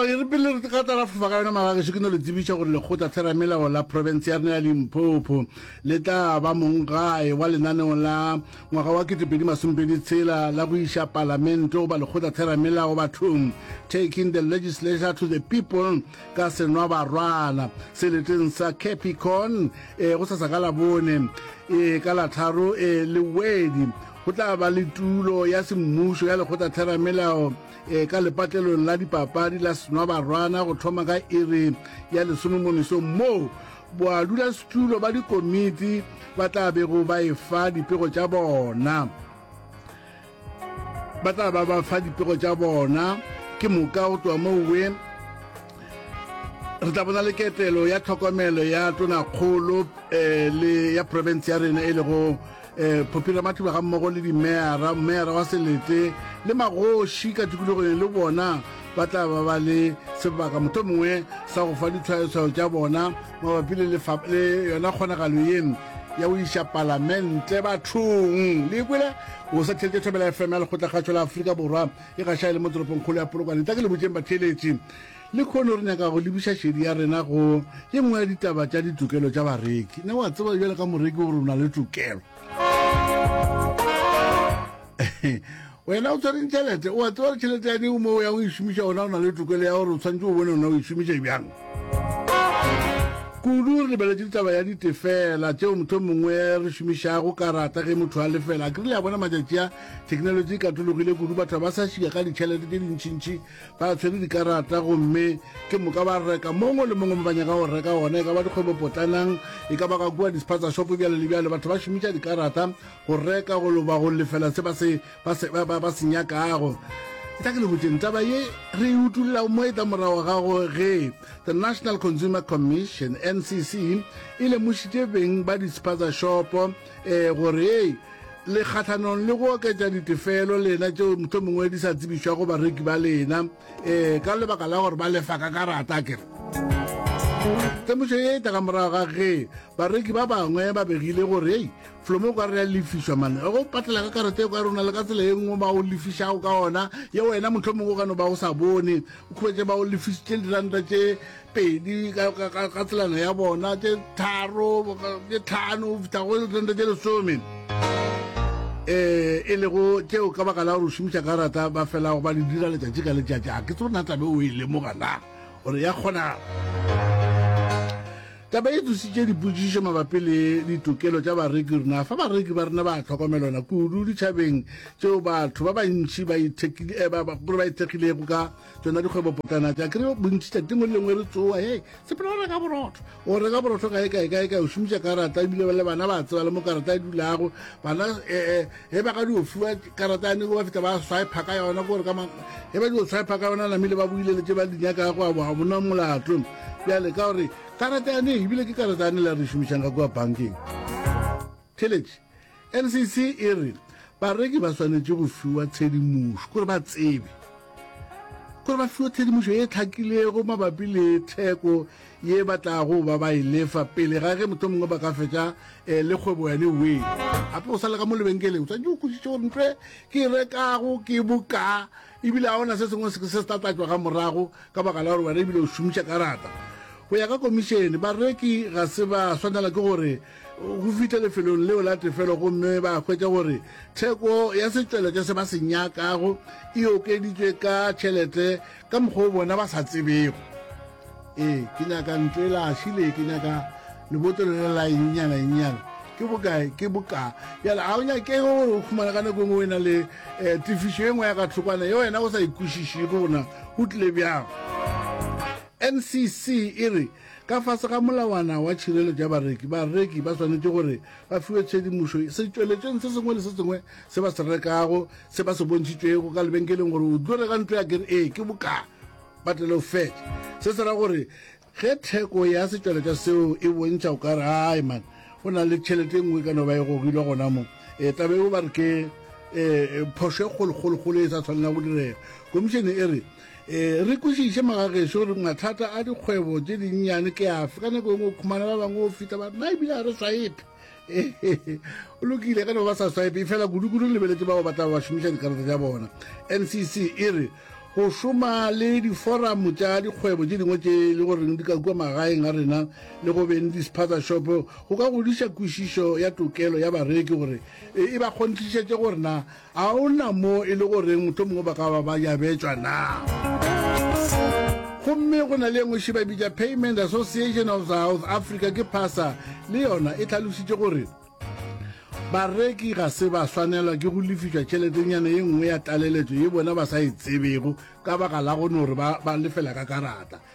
A ge re pele re ka tla ra fofa ka yona magageso ke no le tsebiša gore lekgotla theramelao la profense ya rena ya limphopho le tla ba mong gae wa lenaneong la ngwaga wa ketepedi masompedi tshela la go iša palamente goba lekgotla theramelao bathong taking the legislature to the people ka senwa barwana seleteng sa capicon e eh, go sa sa ka labone e eh, ka latharo e eh, lewedi go tla ba le tulo ya semmušo ya lekgotla theramelao e ka lepatlelong la dipapadi la senwabarwana go thoma ka iri ya lesome mo mesong moo boadulasetulo ba dikomiti ba tla bego ba e fa dipego tša bona ba tla ba ba fa dipego tša bona ke moka go tloa moo we re tla bona le ketelo ya tlhokomelo ya tonakgolo um le ya profense ya rena e lego Phopi Ramathiba gammogo le dimeyara, meyara wa Selete le magoši ka tikologong le bona ba tla ba ba le sebaka mohlomongwe sa go fa ditshwayotshwayo tša bona mabapi le lefapha le yona kgonagalo ye ya go iša palamente bathong. Le kwele o sa theletše Thobela FM ya Lekgotlakgašo la Afrika Borwa e gaša e le mo toropongkgolo ya Polokwane. Tla ke le botšeng batheeletši. Lekhono re nyaka go lebiša šedi ya rena go ye nngwe ya ditaba tša ditokelo tša bareki. Na o a tseba bjale ka moreki gore o na le tokelo? Wena o tshwereng tšhelete, o a tseba gore tšhelete ya neo mo o yang o e šomiša ona o na le tokelo ya gore o tshwanetse o bone ona o e šomiše bjang. Kudu re lebeletše ditaba ya ditefela tšeo motho mongwe re šomišago karata ge motho a lefela. Akere le a bona matšatši a, theknolotši e katologile kudu, batho ga ba sa šika ka ditšhelete tše dintšintši ba tshwere dikarata gomme ke moka ba reka mongwe le mongwe mo ba nyaka go reka gona e ka ba dikgwebopotlanang e ka ba ka kua dispatsa shop bjalo le bjalo batho ba šomitša dikarata go reka go loba go lefela se ba se nyakago tla ke le botseng taba ye re e utulela mo e tla morago ga go ge the national consumer commission ncc e lemošitše beng ba dispatsa shopo e, gore ee, le kgahlanong le go oketša ditefelo lena tšeo motho mongwe di sa tsebišwago bareki ba lena e, ka lebaka la gore ba lefa ka karata kere temošo ye e tla ka morago ga ge bareki ba bangwe ba begile gore ei flomo ka re a lefišwa mane go patela ka karata e ka rona le ka tsela e nngwe ba o lefišago ka ona ye wena motlho mongwe o ka no ba o sa bone o khubetse ba o lefisitše diranta tše pedi ka tselano ya bona tše tharo tše tlhano go fihla go diranta tše lesome um e lego tšeo ka baka la gore o šomiša karata ba felago ba le dira letšatši ka letšatši a ke tse gona tlabe o e lemoga na gore ya kgonang taba e tsositše dipotsišo mabapi le ditokelo tša bareki rena fa bareki ba rena ba tlhokomelwana kudu ditšhabeng tšeo batho ba bantši ba eh, ithekgilego ka tsona dikgwebopotlana tša kry bontši tšatši ngwe lengwe re tsoa e sepela o reka borotho o reka borotho kae kae kae kae o šomiša karata ebile ba le bana ba tseba le mo karata e dulago bana e eh, eh, ba ka dio fiwa karata yane ba feta ba swipa ka yona kore ka e ba dio swipa ka yona namile ba buile le tse ba di nyakago a boa bona molato bjale ka gore karata yane ebile ke karata yane la re šomišang ka kua bankeng theletše NCC e re bareki ba swanetše go fiwa tshedimošo gore ba tsebe gore ba fiwa tshedimošo ye e tlhakilego mabapi le theko ye ba tlago ba ba e lefa pele ga ge motho mongwe ba ka fetša um le kgwebo yane wee gape o sa le ka mo lebenkeleng o tshwanetse o kwešiše gore ntlo ke e rekago ke boka E bile ga go na se sengwe se se tla tlatšwa ga morago ka baka la gore wena e bile o šomiša karata. Go ya ka Komišene, bareki ga se ba swanela ke gore go fihle lefelong leo la tefelo gomme ba hwetša gore theko ya setšweletšwa se ba se nyakago e okeditšwe ka tšhelete ka mokgwa o bona ba sa tsebego. ee ke nyaka ntlo e lašile ke nyaka lebotolo le la enyenyana enyenyana ke boka ke boka bjale ga o nyakege gore o khumana ka nako e ngwe o e na le um tefišo e nngwe ya ka tlhokwana ye wena o sa ikwešišige gorena o tlile bjago ncc e re ka fase ga molawana wa tšhireletšo ya bareki bareki ba swanetše gore ba fiwe tshedimošo setšweletšeng se sengwe le se sengwe se ba se rekago se ba se bontšhitšwego ka lebenkeleng gore o tlo reka ntlo ya kere ee ke boka Batelofetša. Se se ra gore ge theko ya setšweletša seo e bontšha o ka re, Ai man, go na le tšhelete e nngwe e ka no ba e gogilwe gona mo. E, taba eo ba re ke e, phošo e kgolokgolokgolo e sa tshwanela go direga. Komišene e re, E, re kwešiše magagešo gore mathata a dikgwebo tše dinnyane ke afe. Ka nako e nngwe o khumana ba bangwe o feta ba re, Na e bile ga re swaethe? o lokile ka no ba sa swipe e fela kudu-kudu le lebeletse bao ba tla ba šomiša dikarata tša bona ncc e re go šoma le diforamo tša dikgwebo tše dingwe tše le goreng di ka kua magaeng a rena le go beng disphaza shop go ka godiša kwešišo ya tokelo ya bareki gore e, e ba kgonthišetše gore na A o na mo e le go reng mohlomongwe ba ka ba ba ja betšwa naa? Gomme go na le engwe šiba bitša Payment Association of South Africa ke PASA le yona e tlhalošitše gore bareki ga se ba swanelwa ke go lefišwa tšheletenyana ye nngwe ya tlaleletšo ye bona ba sa e tsebego ka baka la go no re ba ba lefela ka karata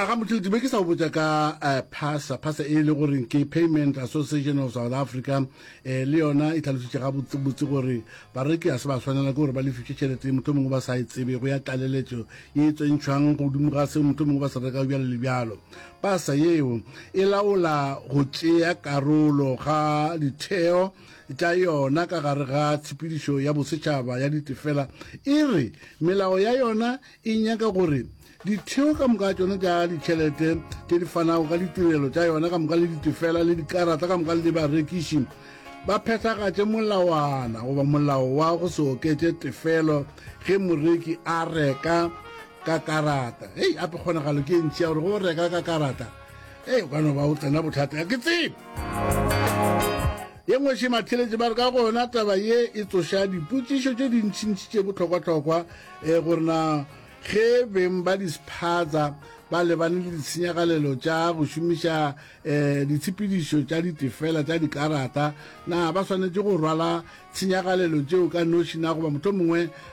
a ga motlhelete be ke sa botsa ka eh, phasa phasa e le goreng ke payment association of south africa um le yona e tlhalositse ga botsebotse gore bareki a se ba tshwanela ke gore ba lefitse tšhelete motlho mongwe ba sa e tsebe go ya tlaleletso e e tsentšhwang godimo ga seo motlho mongwe ba sa reka bjalo le bjalo pasa yeo e laola go tšea karolo ga ditheo tša yona ka gare ga tshepedišo ya bosetšhaba ya ditefela e re melao ya yona e nyaka gore ditheo ka moka tšone tša ditšhelete tše di fanago ka ditirelo tša yona ka moka le ditefela le dikarata ka moka le barekiši ba phethagatše molawana goba molao wa go se oketše tefelo ge moreki a reka ka karata hei ape kgonagalo ke ntši ya gore go reka ka karata ee o ka no ba o tsena bothata ke tsebe ye ngweše matheletše ba re ka gona taba ye e tsoša dipotšišo tše dintšintši tše bohlokwahlokwa Ee, gore na ge beng ba disephatsa ba lebane le ditshenyagalelo tša go šomiša um ditshepedišo tša ditefela tša dikarata, na ba swanetše go rwala tshenyagalelo tšeo ka noši na goba mohlomongwe